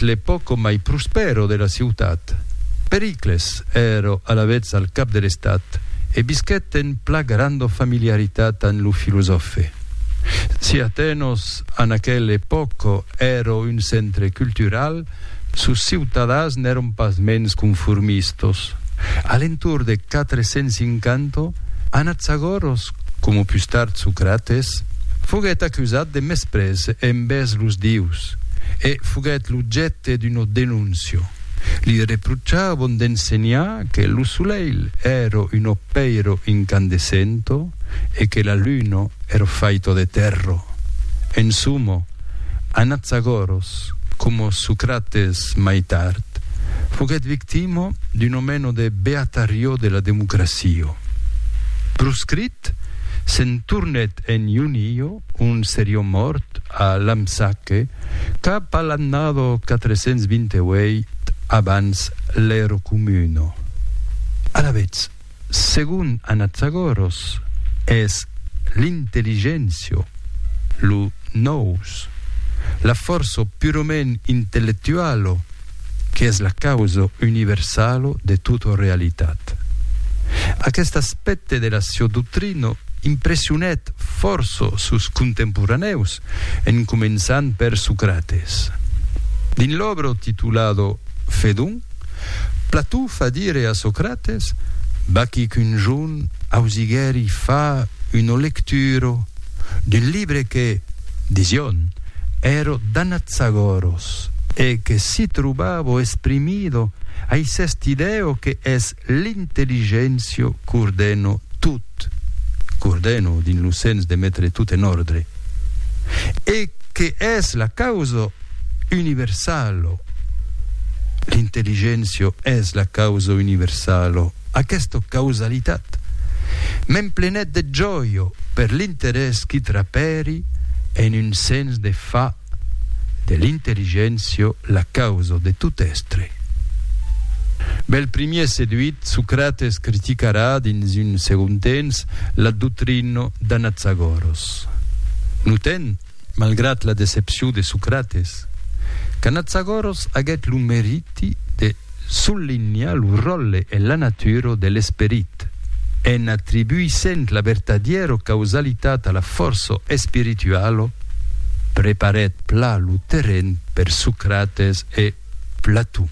l'epòca mai prospèra de la ciutat. Pericles èra alavetz al cap de l'estat e visquèt en pla granda familiaritat amb lo filosòfe. Si Atenos en aquela epòca èra un centre cultural, sos ciutadans n'èran pasmens conformistas. A l'entorn de 450, anatz agòra Coma pus tard Socrates, foguèt acusat de mesprés envèrs los dieus e foguèt l'objècte d'una denóncia. Li reprochavan d'ensenhar que lo solelh èra un opèiro incandescento e que la luna èra faita de tèrra. En soma, Anaxagòras, coma Socrates mai tard, foguèt victima d'una mena de beatarió de la democracia. Proscrit, se'n tornèt en Ionio, ont serió mòrt a Lampsaque cap a l'annada 428 abans l'Ero Comuna. Alavetz, segon Anatzagoros, es l'intelligéncia, lo nous, la fòrça purament intellectuala, qu'es la causa universala de tota realitat. Aqueste aspècte de la siá doctrina impressionèt fòrça sos contemporanèus, en començant per Socrates. Dins l'òbra titulada Fedon, Plató fa dire a Socrates, Vaquí qu'un jorn ausiguèri far una lectura, d'un libre que, dision, èro danat sagorós e que si trobavo esprimido aicest idèo que es l'intelligéncio qu'ordeno tot, qu'ordeno dins lo sens de metre tot en òrdre, e que es la causa universalo, l'intelligéncia es la causa universalo, aquesta causalitat m'emplenèt de jòia per l'interès qui trapèri en un sens de fa de l'intelligéncia la causa de tot èstre. Bèl primièr seduit, Socrates criticarà dins un segond temps la doctrina d'Anaxagòros. Notèm malgrat la decepcion de Socrates, qu'Anatzagoros aguèt lo meriti de sollinhar lo ròtle e la natura de l'esperit, en atribuissent la vertadièra causalitat a la fòrça espirituala, preparèt plan lo terren per Socrates e Platon.